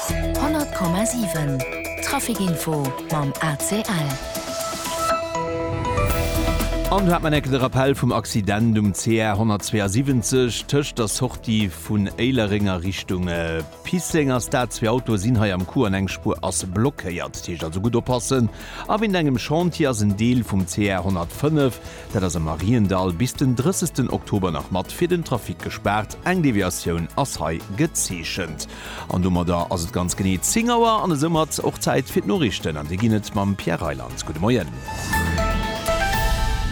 100,7 Trafic Info mam ACL. An do hat mer enke de Rappell vum Accident um CR 172 tëscht der Sortie vun Éilereng a Richtung Pisseng ass dat. Zwee Autoe sinn hei am Coup an eng Spuer ass blockéiert. Dat heescht also gutt oppassen a wéint engem Chantier ass en Deel vum CR 105 dat ass am Mariendall, bis den 30 Oktober nach mat fir den Trafic gespaart. Eng Deviatioun ass hei gezeechent. An domadder ass et ganz genee 10 Auer an esoumat och Zäit fir d'Noriichten an déi ginn et mam Pierre Reyland. Gudde Moien.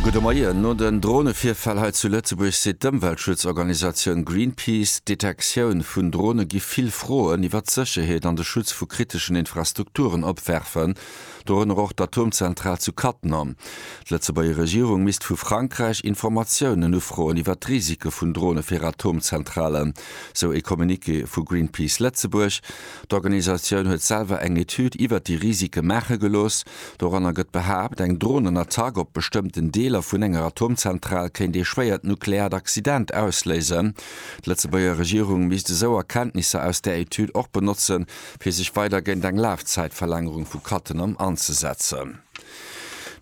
Gudde Moien. No den Dronevirfäll hei zu Lëtzebuerg seet d'Ëmweltschutzorganisatioun Greenpeace, d'Detektioun vun Drone gi vill Froen iwwert d'Sécherheet an de Schutz vu kriteschen Infrastrukturen opwerfen. dorënner och d'Atomzentral zu Cattenom. D'Lëtzebuerger Regierung misst vu Frankräich Informatiounen ufroen iwwer d'Risike vun Drone fir Atomzentralen, sou ee Communiqué vu Greenpeace Lëtzebuerg. D'Organisatioun huet selwer eng Etüd iwwer déi Risike maache gelooss. Doranner gëtt behaapt, eng Dronenattack op bestëmmten Deeler vun enger Atomzentral kéint ee schwéiert nukleaart Accident ausléisen. D'Lëtzebuerger Regierung misst esou Erkenntnisser aus där Etüd och benotze fir sech weider géint eng Lafzäitverlängerung vu Cattenom anzesetzen.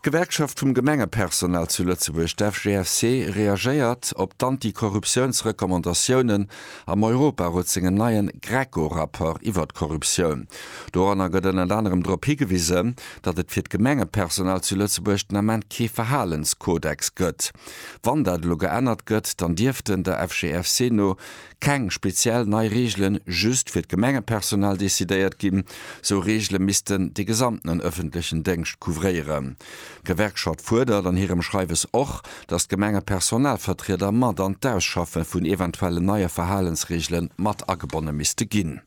D'Gewerkschaft vum Gemengepersonal zu Lëtzebuerg, d'FGFC, reagéiert op d'Anti-Korruptiouns-Recommandatiounen am Europarot sengem neien GRECO-Rapport iwwer d'Korruptioun. Doranner gëtt ënnert anerem drop higewisen, datt et fir d'Gemengepersonal zu Lëtzebuerg den Ament kee Verhalenskodex gëtt. Wann dat elo geännert gëtt, dann dierften, der FGFC no, keng speziell nei Reegelen just fir d'Gemengepersonal decidéiert ginn. Sou Reegele missten de gesamtenen ëffentlechen Déngscht couvréieren. D'Gewerkschaft fuerdert an hirem Schreiwes och, datt d'Gemengepersonalvertrieder mat an d'Ausschaffe vun eventuellen neie Verhalensreegele mat agebonne misste ginn.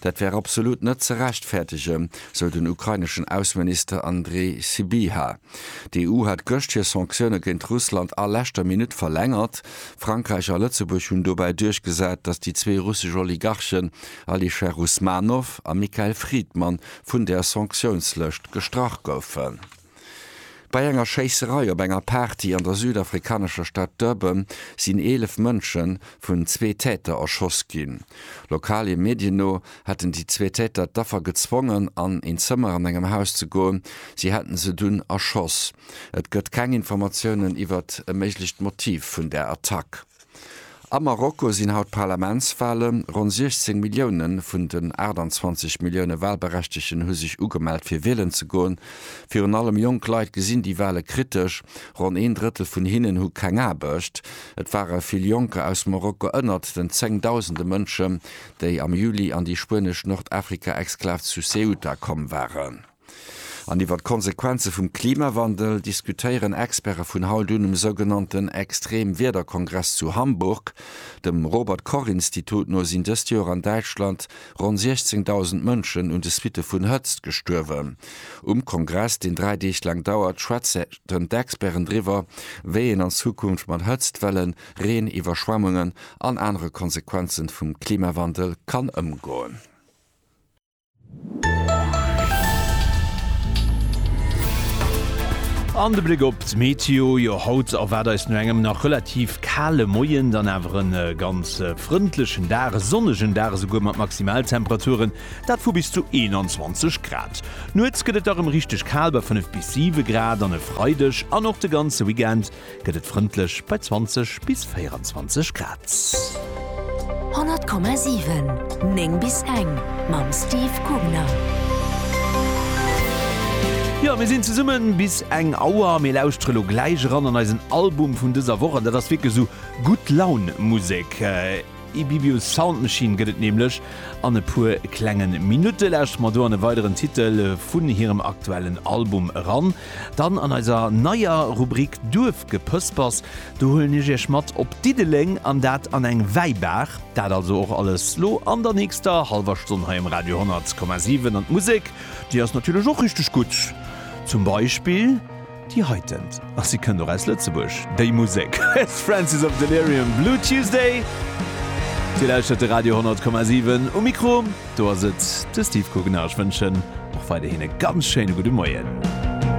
Dat wär absolut net ze rechtfäertege, sou den ukraineschen Ausseminister Andrij Sybiha. D'EU hat gëscht hir Sanktioune géint Russland a leschter Minutt verlängert. Frankräich a Lëtzebuerg hunn dobäi duerchgesat, datt déi zwee russesch Oligarchen Alisher Usmanov a Mikhail Fridman vun där Sanktiounslëscht gestrach goufen. Bei enger Schéisserei op enger Party an der südafrikanescher Stad Durban sinn 11 Mënsche vun zwee Täter erschoss ginn. Lokale Medien no hätten déi zwee Täter d'Affer gezwongen, an een Zëmmer an engem Haus ze goen. Si hätten se dunn erschoss. Et gëtt keng Informatiounen iwwert e méiglecht Motiv vun der Attack. A Marokko sinn haut d'Parlamentswalen. Ronn 16 Millioune vun den 28 Millioune Walberechtegten hu sech ugemellt fir wielen ze goen. Virun allem jonk Leit gesinn déi Wale kritesch. Ronn een Drëttel vun hinnen hu keng Aarbecht. Et ware vill Jonker aus Marokko ënnert den zéngdausende Mënschen, déi am Juli an déi spuenesch Nordafrika-Exklav zu Ceuta komm waren. An iwwer d'Konsequenze vum Klimawandel diskutéieren Experte vun haut un um sougenannten Extremwiederkongress zu Hamburg. Dem Robert Koch Institut no sinn dëst Joer an Däitschland ronn 16.000 Mënschen un de Suitte vun Hëtzt gestuerwen. Um Kongress, deen dräi Deeg laang dauert, schwätzen d'Experten driwwer, wéi een an Zukunft mat Hëtzt, Wellen, Reen, Iwwerschwemmungen an anere Konsequenze vum Klimawandel kann ëmgoen. An de Bléck op d'Meteo, jo haut erwaart eis no engem nach relativ kale Moien dann awer en ganz frëndlechen Dag, e sonnegen Dag esouguer mat Maximaltemperaturen, dat vu bis zu 21 Grad. Nuets gëtt et da rem richteg kal bei 5 bis 7 Grad an e Freideg an och de ganze Weekend gëtt et frëndlech bei 20 bis 24 Grad. 100,7, 9 bis eng mam Steve Kugner. Jo, mir sinn zesummen bis eng Auer. Mir lauschtere lo gläich eran an eisen Album vun dëser Woch, an dat ass wierklech esou Gutt-Laun-Musek. E Bibius Sound Machine gëtt et nämlech an e puer klenge Minutte. Lauschtert mer do an e weideren Titel vun hirem aktuellen Album eran. Dann an eiser neier Rubrik Duerfgepëspers, do huelen ech iech mat op Diddeleng an dat an eng Wäibaach. Dat also och alles lo an der nächster hallwer Stonn hei um Radio 10,7. An d'Musek, déi ass natierlech och richteg gutt, zum Beispill. Déi heitent, a si kënnt och aus Lëtzebuerg, déi Musek huet Francis of Delirium, Blue Tuesday. Dir lauschtert de Radio 10,7. Um Mikro, do ass et de Steve Kugner. Ech wënschen och weiderhin e ganz schéine gudde Moien.